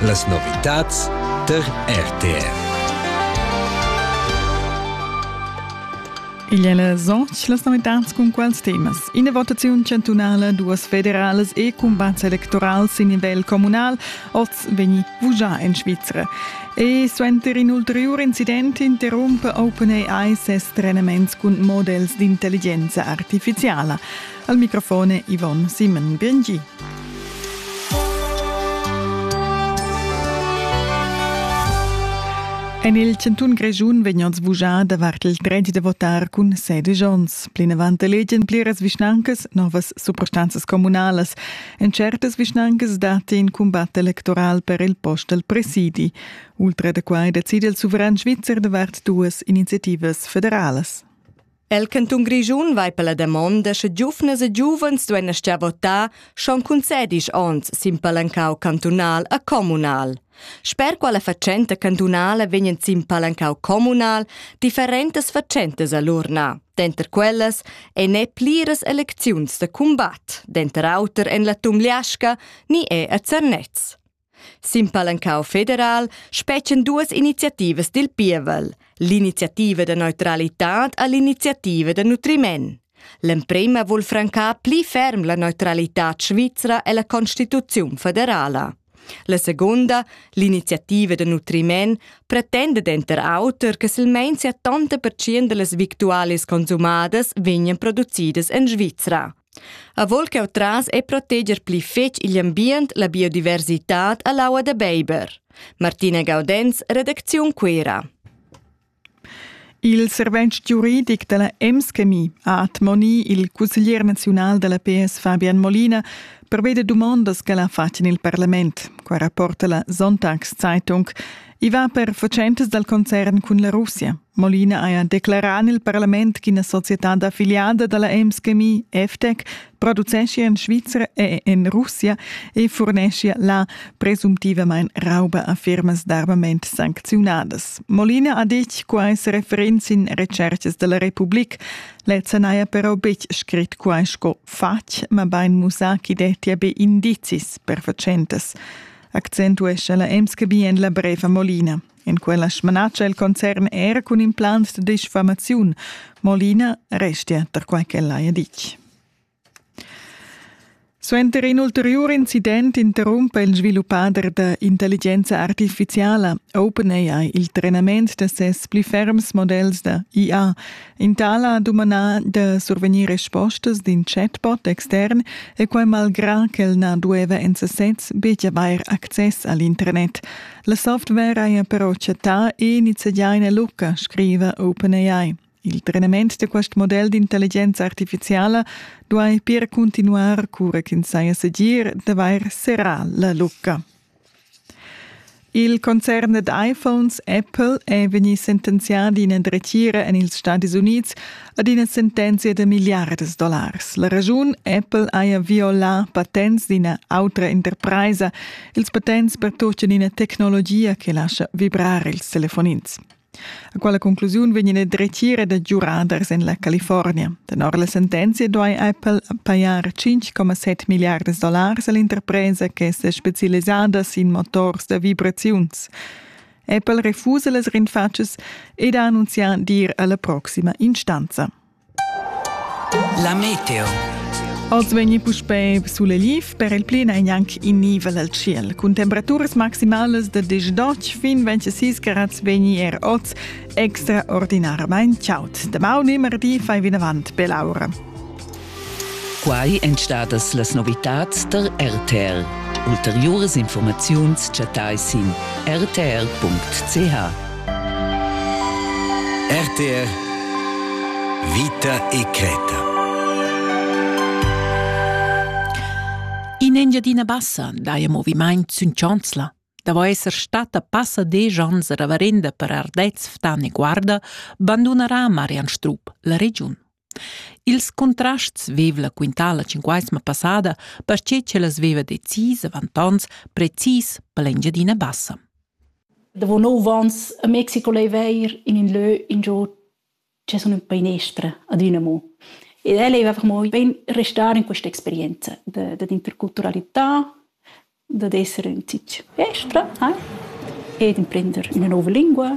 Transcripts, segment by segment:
Las novitads tar RTR. Illes onch las novitats cun quals temas? Ina votaziun chantunala, duas federalas e cumbats electorals in nivel communal oz vegni vugià en Svizra. E suenter in ulteriur incident interrumpe OpenAI ses trenaments cun models d'intelligenza artificiala. Al microfone Yvonne Simon Biengi. En il chantun Grischun vegnan sbugià davart il dret da votar cun sedisch onns. Plinavant elegian pliras vischnancas novas suprastanzas communalas. En certas vischnancas datti in cumbat electoral per il post al presidi. Ultra da quai decide il suveran svizzer davart duas iniziativas federalas. El cantun Grischun vai per la damonda sche giuvnas e giuvens duein astgar votar schon cun sedisch onns sin palancau cantunal a communal. Sper quella fatschenta cantunala vegnan sin palancau communal differentas fatschentas a l'urna. Denter quellas ein ne pliras elecziuns da cumbat, denter auter en la Tumliasca ni è a Zernez. Sin palancau federal spetgan duas iniziativas dil pievel, l'iniziativa da neutralitad e l'iniziativa da nutriment. L'emprema vul francar pli ferm la neutralitad svizra ella Constituziun federala. La segunda, l'iniziativa da nutriment, pretenda denter auter che silmein 70% dallas victualias consumadas vegnan producidas en Svizra. Avon ch'jeu tras e proteger pli fetg igl ambient, la biodiversitad e l'aua da beiber. Martina Gaudenz, redacziun Cuera. Il servent giuridic della Emschemie ha admonì il cusseglier naziunal della PS Fabian Molina per veder dumondas che l'ha fatg in il parlament. Qua rapporta la Sonntagszeitung. I va per fatschentas dal concern cun la Russia. Molina haja declerà en il parlament ch'ina societad affiliada da la Ems Chemie FTEC produceschia en Svizra e en Russia e furneschia là presumptivamain rauba a firmas d'armament sancziunadas. Molina ha ditg quai sa referenz in recercas da la Republik. Lezza n'haja però betg scrit quai sco fatg, mabain mussà ch'i dettia be indizis per fatschentas. accentuescha la MSCB en la brev a Molina. En quella smanatscha il concern era cun implants de disfamaziun. Molina restia tar quai ch'ella ha ditg. Suenter in ulteriur incident interrumpa il sviluppader da intelligenza artificiala OpenAI il trenament da ses pli ferms modells da IA. In tal ha dumandà da survegnir respostas d'in chatbot extern e quai malgrà ch'el na dueva en sasez betg avair access a l'internet. La software haja però chattà e nizzegià ina lucca, scriva OpenAI. Il trenament da quest model d'intelligenza artifiziala duai pir cuntinuar cura ch'ins saja segir d'avair serrà la lucca. Il concern ad iPhones Apple è vegnì sentenzià d'ina dretgira en ils Stadis Unids ad ina sentenzia da milliardas dollars. La raschun Apple haja violà patents d'ina autra interpraisa, ils patents per tutto ina tecnologia che lascia vibrar ils telefonins. A quella conclusiun vegn il dretgira da giuraders en la California. Tenor la sentenzia duai Apple pajar 5,7 milliardas dollars a l'interpresa che è specialisada sin motors da vibraziuns. Apple refusa las rinfatschas ed ha annunzià d'ir alla proxima instanza. La meteo. Oz vegni puspei suleliv per il pli ein anc in nivel al ciel. Cun temperaturas maximalas da 18 fin 26 grad vegni er oz extraordinarmain chaud. Damaun e mardi fai vinavant per l'aura. Quai èn stadas las novitads tar RTR. Ulteriuras informaziuns chattai sin rtr.ch. RTR Vita e Creta. In Engiadina Bassa daja movimaint sün Chanzla. Davo esser stata passa desch ans a Ravarenda per Ardez, Ftan e Guarda, bandunarà Marian Strup la regiun. Ils contrasts veva la quintala cinquaisma passada, perche ch'ellas veva decis avant ons precis per l'Engiadina Bassa. Davo nov ans a Mexico lei veir in in lö ingio che sun ün painestra ad üna mo. Ed el leva per moi ben restar in questa experienza de, de d'interculturalità, dad esser ün tich estra ai ed imprender üna nouva lingua.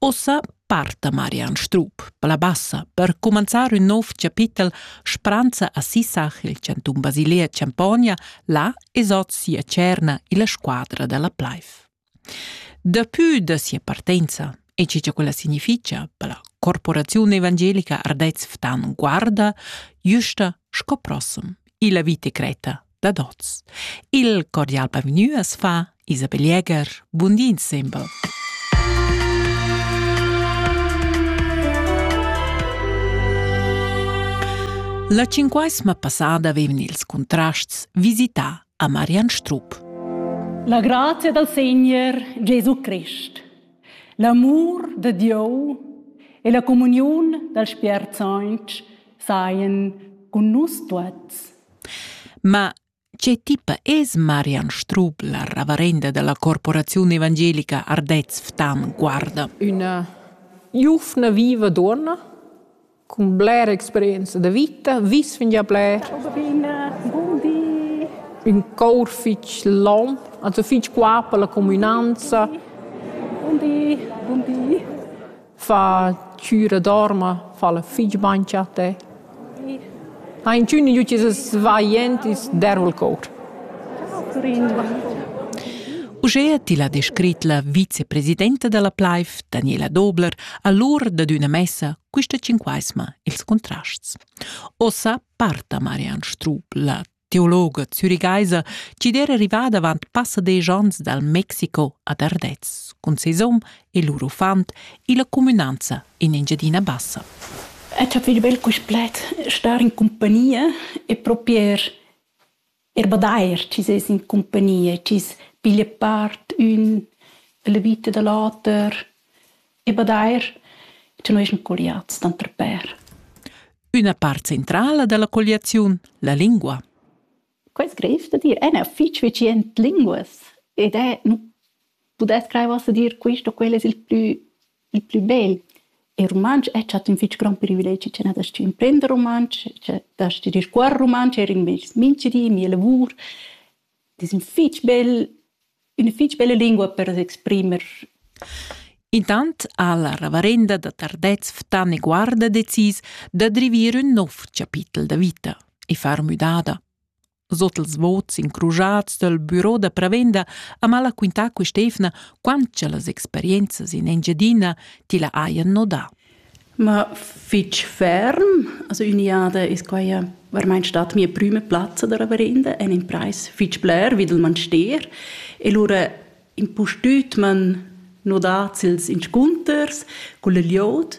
Uossa parta Marian Strup per la bassa per cumanzar ün nouv chapitel Spranza a Sissach il chantun Basilia Champogna, là es hoz sia tscherna illa squadra da la Pleif. Dapü da sia partenza e che cha quella significha per la corporaziun evangelica Ardez Ftan guarda güsta sco prossum illa vita cretta dad hoz. Il cordial bavgnü as fa Isabel Jäger. Bun di insembel. La cinquesma passada vevn ils contrasts visità a Marian Strup. La grazia dal Segner Gesù Christ, l'amur de Dieu e la comuniun dal Spiert Sanch saien cun nus tuots. Ma che tipa es Marian Strup, la ravarenda della Corporazione Evangelica Ardez Ftan Guarda? Una giuvna viva donna Cun blera experienza da vita vis fingià bler. Buon di. Ün cour fich lom, also fich qua per la cumünanza. Buon di. Buon di. Fa chüra dorma, fa'la fich bain cha a te. Ha inchün gnü Jesus svajend ils derva'l cour? Uschea til ha descrit la vicepresidenta da la plaiv, Daniela Dobler, allura dad üna messa quista tschinquaisma ils contrasts. Ossa parta Marianne Strup, la teologa zürigaisa, chi'd era rivada avant passa desch ans dal Mexico ad Ardez cun ses hom e lur uffant illa cumünanza in Engiadina Bassa. Ed ha fich bel quist pled, star in compagnia e propi er er badair chi ses in compagnia, chi's piglia part ün la vita da l'oter e badair cha noi eschan colliats tanter pèr. Üna part centrala da la colliaziun, la lingua. Quei sgrev da dir ein er fitg vicient linguas ed è, nu pudess crair uossa dir quist o quel es il plü il plü bel. Il rumantsch è stat ün fitg grond privilegi cha n'has da stü imprender rumantsch, cha da stü discuorre rumantsch, eir in meis minchedi, mia lavur. Ed es ün fitg bel üna fich bella lingua per s'exprimer. Intant ha la reverenda da Tardez Ftani Guarda decis da drivir ün nouv chapitel da vita e far müdada. Sot els vots incrujats dal büro da prevenda ha mal quintà quist'efna quant cha las experienzas in Engiadina tilla hajan nodà. Ma fich ferm, also ün'jada es quai varmaing stat mia prüma plazza da reverenda e l'imprais fich bler vi dal manstier e lura impustüt m'han nodats ils inscunters culla glieud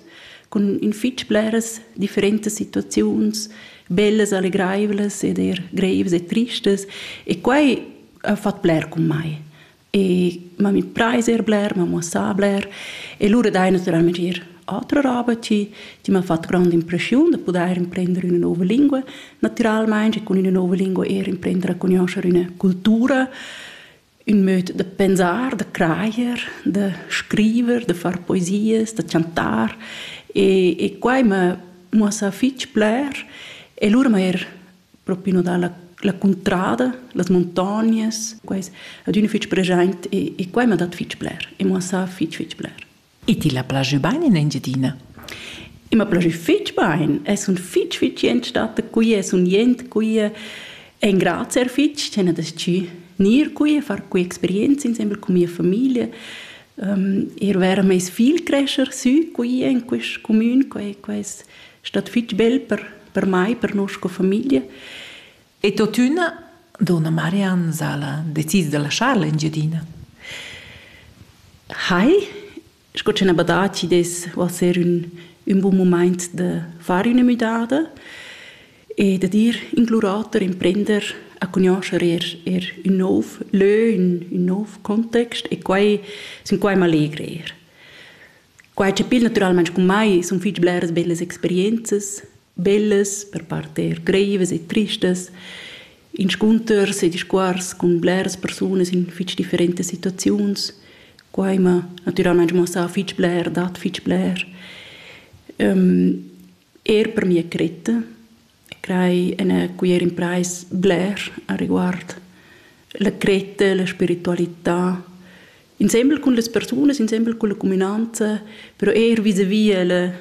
cun in fich bleras differentas situaziuns, bellas, allegraivlas ed eir greivas e tristas e quai ha fat bler cun mai. e ma mi preis er bler, ma muossà bler e lura dai naturalmente ir altra roba ti, ti m'ha fatto grande impressione da poter imprendere una nuova lingua, naturalmente con una nuova lingua er imprendere a conoscere una cultura, un modo de pensar, de crajer, de scriver, de far poesies, de chantar e, e quai m'ha muossà fitg bler e lura m'ha er propi no dalla la cuntrada, las montagnas, quais adüna fich preschaint e, e quai m'ha dat fich bler e m'ha sa fich fich bler. E ti la plazü bain in Engiadina? E ma plazü fich bain, e sun fich fich jent stata qui e sun jent qui e engrazia er fich ch'ena descì gnir qui e far qui experienza insembel cun mia famiglia. Um, er vera meis figl crescher sü qui in quist comün, quai quais stat fitg bel per, per mai, per noi sco famiglia. E tuttina, donna Marianne Sala decide da lasciar l'Engiadina. Hai, sco ce n'è badaci des ser un, un buon moment da fare una müdada e da dir in glurator imprender a conoscere er, er un nov lö, un, un nov context e quai, sin quai m'allegre er. Quai chapir natüralmaing cun mai sun fich bleras bellas experienzas, bellas, per part eir greivas e tristas, inscunters e discuors cun bleras persunas in fich differentas situaziuns. Quai m'ha natüralmaing muossà fich bler, dat fich bler. Eir per mia cretta e crai ina cuier imprais bler areguard la cretta, la spiritualità, insembel cun las persunas, insembel cun la cuminanza, però eir vis-à-vis la,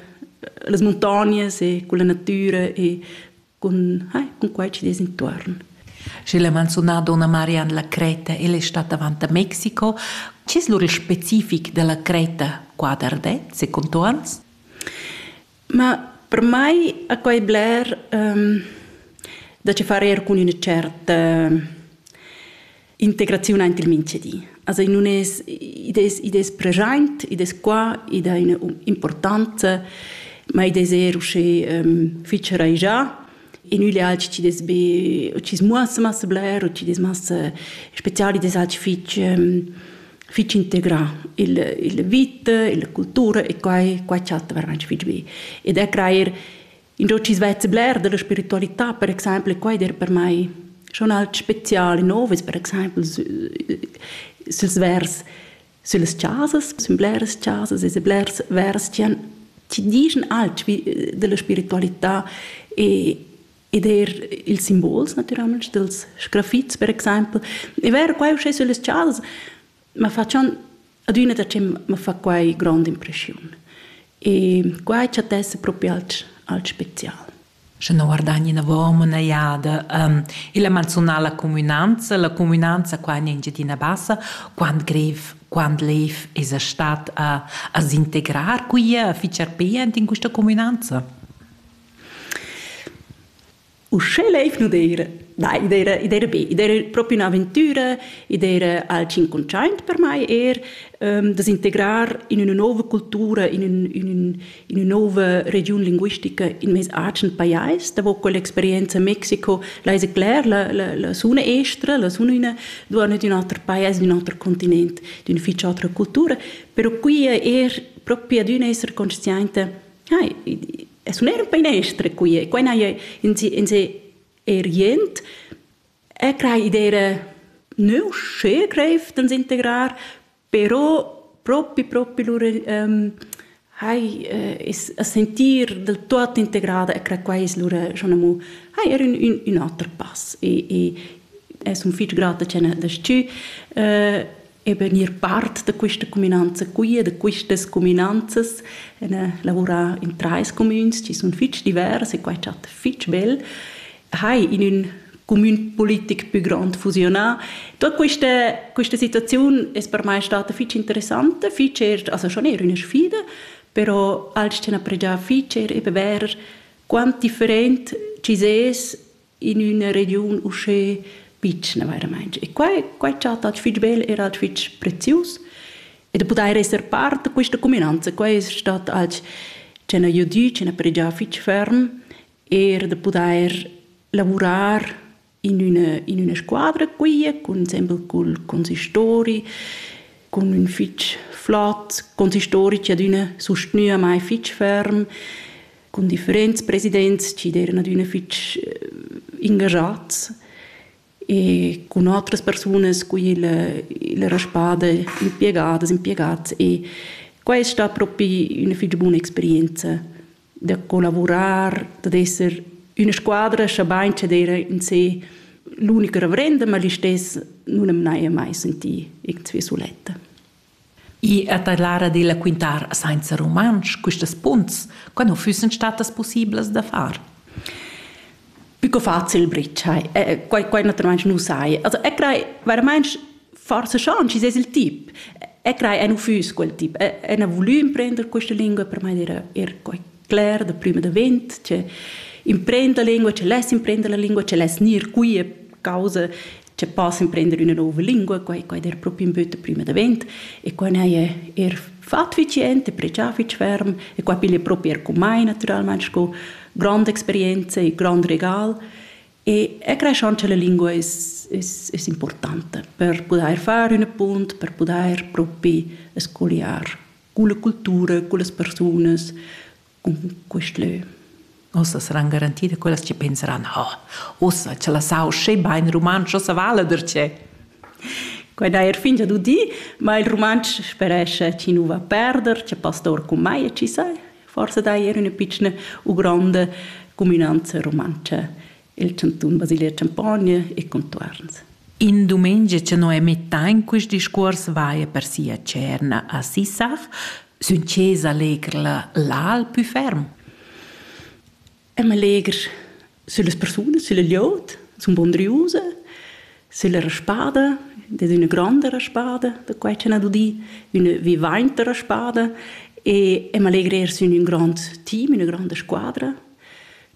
las muntognas e cun la natüra e cun, eh, cun quai chi dess intuorn. Schi l'ha manzunà donna Marian la Creta, ella è stata avant a Mexico. Chi es lur il specific della Creta qua d'Ardez, secondo ans? Ma per mai a quai bler da che far eir cun üna tscherta integraziun aint il minchedi. Also nun es id es id es preschaint, id es qua, id ha üna importanza, ma id es eir uschè fich raischà in üglial chi dess be o chi's muossa massa bler o chi dess massa special, id es alch fich fich integrà il il vita, la cultura e quai quai chatta veramaing fich be. Ed er crajer ingio chi's vezza bler da la spiritualità per exaimpel e quai der per mai schon alch special e nov es per exaimpel sü süls vers Sillas chasas sun bleras chasas e blers vers chi han chi dischan alch vi della spiritualità e ed eir ils simbols natüralmaing dels sgrafits per exaimpel. E vero quai uschè süllas chasas ma fa schon adüna da che ma fa quai grond'impreschiun. E quai chattessa propi alch alch special. sche non guardagni inavon üna jada illa manzunala cumünanza. La cumünanza qua in Engiadina Bassa quant grev, quant lev esa stat a s'integrar quia, a fitschar pe aint in quista cumünanza? Uschè leiv nu d'eira, na, i d'eira, i d'eira be, i d'eira propi ün'aventüra, i d'eira al cinquantaint per mai eir da s'integrar in üna nouva cultura, in ün, in ün, ina nova regiun linguistica in mes agen pajais, davo con l'experienza Mexiko, leise cler, la, la, la suna estra, la suna una, duana di un altro paese, di un altro continente, di una ficia altra cultura, però qui è er proprio di un essere consciente, hai, es un era un painestra qui è, qua è in se, in se er jent, e crai idea neu, schön greif, dann integrar, Però propi propi lur um, hai es a sentir del tuot integrada e cre quai es lura schon amo hai er ün ün ün oter pass e e es un fich grata cha n'ha das-chü eben ir part da quista cuminanza qui e da quistas cuminanzas e lavurar in trais cumüns chi sun fich divers e quai chatta fich bel hai in ün cumün politic pü grond fusionà. Tot questa, questa situaziun es per mai stata fich interessanta, fich er, also schon eher üna sfida, però als c'han appregià fich er eben ver quant different ci ses in üna regiun uschè pitschna veramente. E qua, qua è stato fitch bel, era fitch prezius. E da poter essere parte di questa cuminanza, qua è stato als c'hanno aiutà, c'hanno pregià fitch ferm. er da pudair lavurar in üna, in üna squadra quia cun sembel cul consistori cun ün fich flot consistori chi adüna sustgnüa mai fich ferm cun differents presidents chi d'eran adüna fich ingajats e cun otras persunas cu illa, illa raspada impiegadas, impiegats e quai es sta propi üna fich buna experienza. da collavurar, dad esser üna squadra, schabain che d'eira in se l'unica reverenda, ma listess nun am n'haja mai sentì irgendwie suletta. I è da l'ara della quintar sainza rumantsch questas punts, quando füssen statas possiblas da far? Più facil britschai. Eh, quai, quai naturalmaing nu sai. Also, eu craj veramaing forsa schon chi es il tip. Eu craj eu nu füss quel tip. Eu n'ha vulü imprender questa lingua, per mai era er quai cler da prüm davent, che imprender la lingua, che less imprender la lingua, che less gnir qui a causa che pass emprender üna nouva lingua, quai quai der propi ün böt prima davent e quai n'haja er fat fich jent e pregià fich ferm e quai piglia propi er cun mai natüralmaing sco granda experienza e grand regal e e creschan cha la lingua es es es importanta per pudair far üna punt, per pudair propi scogliar culla cultura, cullas persunas, quist lö. Uossa saran garanti da quellas chi penseran, oh, uossa cha la sau sche bain rumantsch, uossa vala darcheu. Quai n'ha er fingià d'udì, ma il rumantsch sperescha chi nu va perder, cha pastor cum mai chi sai. Forse dai er üna pitschna u gronda cuminanza rumantscha il chantun Basilia Champogna e contuarns. In dumengia che Noemi Tain quest discuors vaia per sia cerna a Sissach, sün chesa legr la l'al pü ferm. Am legr sulle persone, sulle liot, sun bondriuse, sulla raspada, das ist eine grande Raspada, da quai c'è una dudi, una vivainta raspada, e am allegrer su in un grand team, una grande squadra,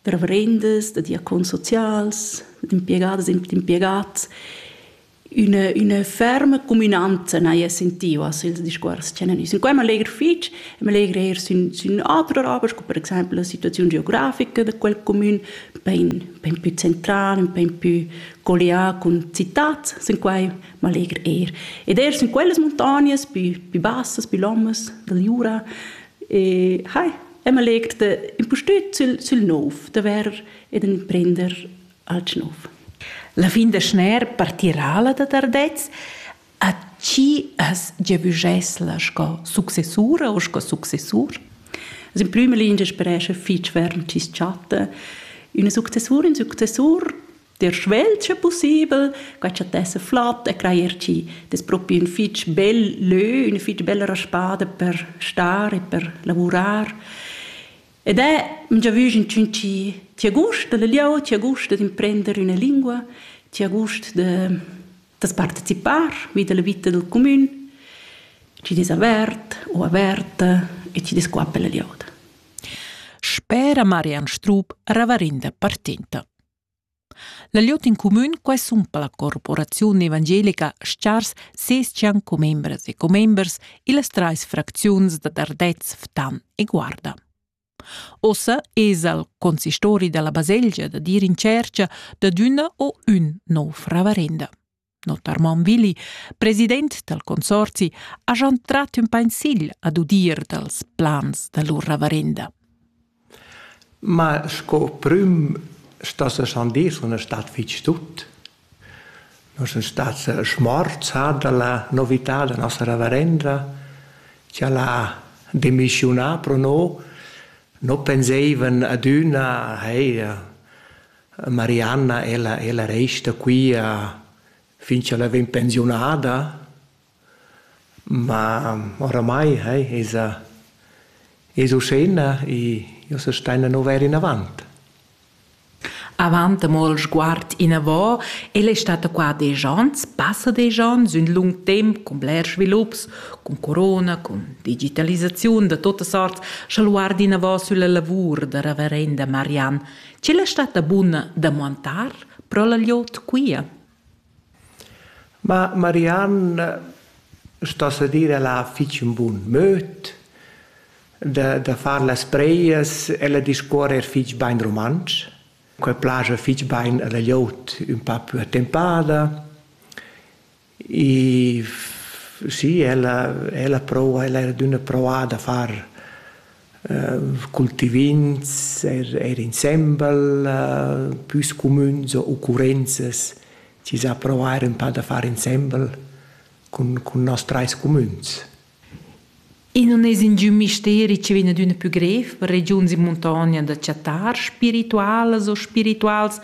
reverendas, da diacons socials, d'impiegadas e d'impiegads. Üna, üna ferma cuminanza n'haja sentiu a ils discuors che n'han Quai m'allegra fitg, m'allegra eir sün, sün autras obras, sco per exempel la situaziun geografica da quel comün, pain, pain pü central, pain pü collià cun citats, sin quai m'allegra eir. Ed eir sün quellas muntognas pü, pü bassas, pü lommas da Jura, e hai, e ma legt da impustüt sül, sül nouv, da vair ed imprender alch nouv. La fin da schner partirà la da Tardez, a chi as giavüschess la sco successura o sco successur? Also in prüma linea sperescha fich ferm tschis chatta. Üna successura, un successur der svelt sche possibel, quai cha tessa flott e crajer chi das propi ün fich bel lö, üna fich bella spada per star e per lavurar. Ed è già vus inchün chi ti ha gust da la lieu, ti ha gust da d'imprender üna lingua, ti ha gust da das partecipar vi da la vita dal cumün, chi des avert o averta e chi des qua per la lieuda. Spera Marian Strup, ravarinda partinta. La glieud in cumün quesumpa la corporaziun evangelica Stars ses-chan commembras e commembers illas trais fracziuns da Dardez, Ftan e Guarda. Ossa esa il consistori dalla baselgia da dir in tschercha dad üna o ün nouv ravarenda. Notarmon Willi, president dal consorzi, ha schon trat ün pensil ad udir dals plans da lur ravarenda. Ma sco prüm sta se schon dir, sun stat fich tut. Non sun stat schmorzada la novità da nostra ravarenda, che l'ha demissionà pro no, no penseivan ad üna, hey, Marianna, ella, ella resta qui a, fin ch'ella vegn pensiunada, ma oramai hey, esa, es uschena e io se staina no vair inavant. Avant amol sguard inavo, el è stata qua desch ans, passa desch ans, ün lung temp cun bler svilups, cun corona, cun digitalisaziun da totas arts, scha luard inavo sülla lavur da reverenda Marianne Ch'el es statta buna da muantar pro la gliot quia. Ma Mariann sto se dir ella ha fich ün bun möd da da far las preias. Ella discuorra eir fich bain rumantsch. Quai plaja fich bain a la gliot ün pa plü attempada. E sì, ella, ella prova, ella era d'üna provà da far uh, cultivins er, er insembel, uh, püs cumüns o occurrenzas chi s'ha provar ün pa da far insembel cun, cun nos trais cumüns. E non es ingün misteri che vegn d'üna pü grev per regiuns in muntogna da chattar spiritualas o spirituals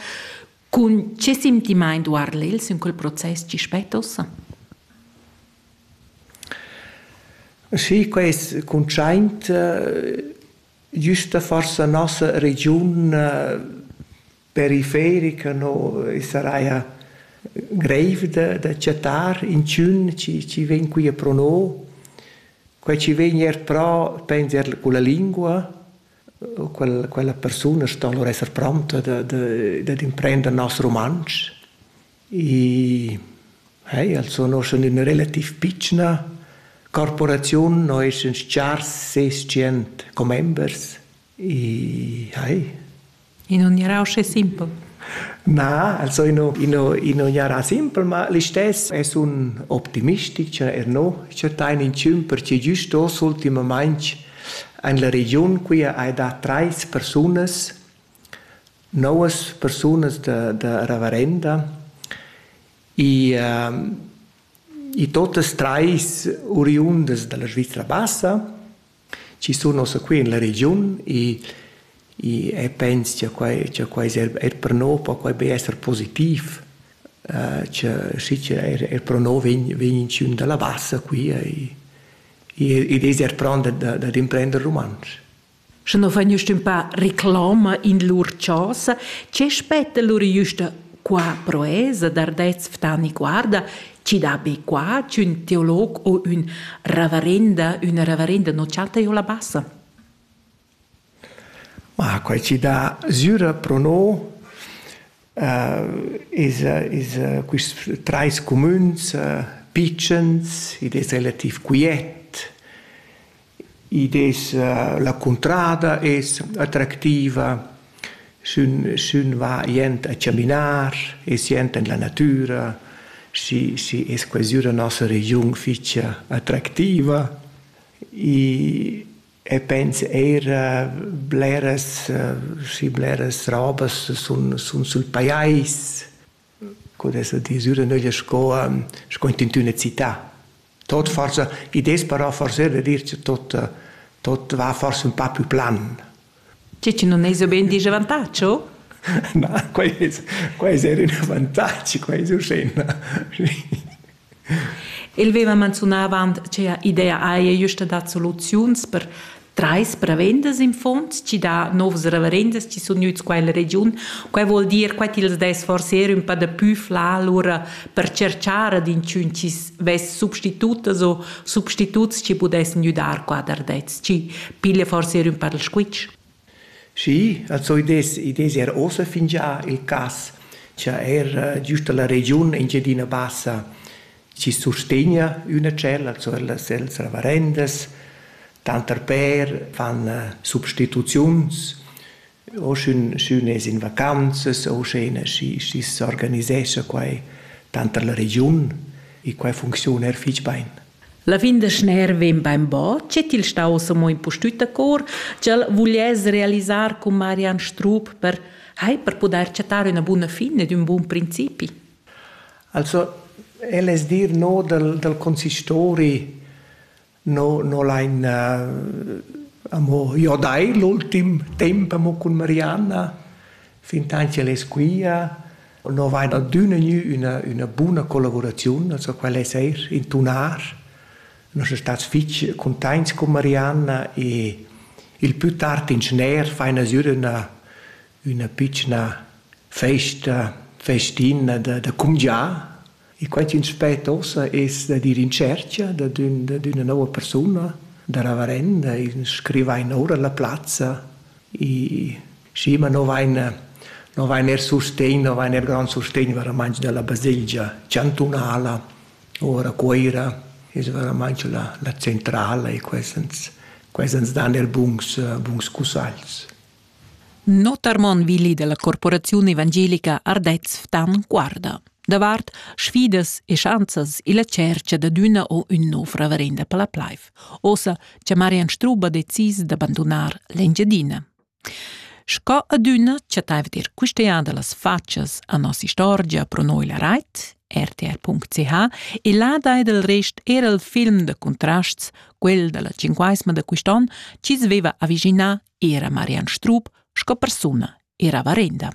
Cun che sentimaint guarda el sün quel process chi spetta ussa? Sì, quest cuntschaint güsta forsa nossa regiun periferica no e saraja greiv da da chattar inchün chi chi vegn quia pro no. Quai chi vegn eir pro penser culla lingua, quella, quella persuna sto allora esser pronta da, da, dad imprender nos rumantsch. E hey, also noi sun üna relativ pitschna corporaziun, noi sun chars 600 commembers e hey, In non era usce simpel. Na, also ino, ino, ino jarà simpel, ma l'istes es un optimistic, cioè er no, cioè tain in cium, perché giust os ultimamaing en la regiun qui hai da trais persunas, novas persunas da, da reverenda, e uh, e totas trais oriundas dalla Svizzera bassa, chi sun ossa qui in la regiun e e e pens cha quai cha quai es eir eir per nouv po quai be esser positiv cha schi cha eir eir pro nouv vegn vegn inchün da la Bassa qui ed es eir pront dad imprender rumantsch. Sche no vegn jüst ün pa reclama in lur chasa, che spetta lur jüsta Qua proesa d'ardets Ftani guarda, chi dà be qua ch'ün teolog o ün ravarenda, üna ravarenda non chatta jo la bassa. Ma quai ci dà süra pro no uh, es, es uh, quist trais cumüns uh, pitschens, id es relativ quiet, Id es la cuntrada es attractiva, sün sün va jent a chaminar e sient in la natüra, schi schi es quai sü da nossa regiun fich attractiva i e pens eir bleras schi bleras robas sun sun sül pajais. co dessa disüra nöglia sco sco in tüna città. Tot forsa ideas però forsa da dir cha tot tot va forsa ün pa plü plan. Che chi nun esa bain disch avantagio? Ma quai es quai es eir ün avantagi, quai es uschè. El veva manzunà avant che idea haja justa dat soluziuns per trais prevendas in fonds, ci dà novs reverendas ci sun gnüts qua in regiun. Quai vuol dir quai tils dess forse er ün pa da pü fla lura per cerchar ad inchün chi vess substitutas o substituts chi pudessan güdar qua dar dets. Ci piglia forse er ün pa dal squitsch. Schi, als hoi dess i dess eir uossa fingià il cas cha eir giüsta la regiun Engiadina Bassa chi sustegna üna tschella, also las cellas ravarendas, tanter pêr fan substituziuns, o sch'ün sch'ün es in vacanzas o sch'üna schi schi s'organisescha quai tanter la regiun, i quai funcziun eir fich bain. La fin da schner vegn bainbod che til staus amo impustüt a cor, ch'el vuliess realisar cun Marian Strup per hai per pudair chattar üna buna fin ed ün bun principi. Also, el es dir no dal, dal consistori no, no lain uh, amo jo dai l'ultim temp amo cun Marianna, fin tanti el es quia, No vain adüna gnü üna üna buna collavuraziun, also quella es eir in tunar. Nus sun stats fich cuntaints cun Marianna e il pü tard in schner faina sür üna üna pitschna festa festina da da cumgià E quai ch'ins spetta ussa es dad ir in tschercha dad ün dad üna nouva persuna, da reverenda, ün scrivain oura la plazza. I schi, ma no vain no vain eir sustegn, no vain eir grand sustegn veramaing da la baselgia chantunala. Oura a Cuoira es veramaing la la centrala e quai ans quai ans dan eir buns buns cussagls. Notarmon Willi della corporaziun evangelica Ardez Ftan guarda davart sfidas e schanzas illa tschercha dad üna o ün nouv reverenda per la plaiv. Ossa cha Marian Strubb ha decis d'abandonar l'Engiadina. Sco adüna chattaiva dir quist'eada las fatschas a nossa istorgia pro noi la rait rtr.ch e là dai del rest era il film de contrasts, quel della cinquaesma de quist'on, chi sveva aviginar era Marian Strub sco persuna era varenda.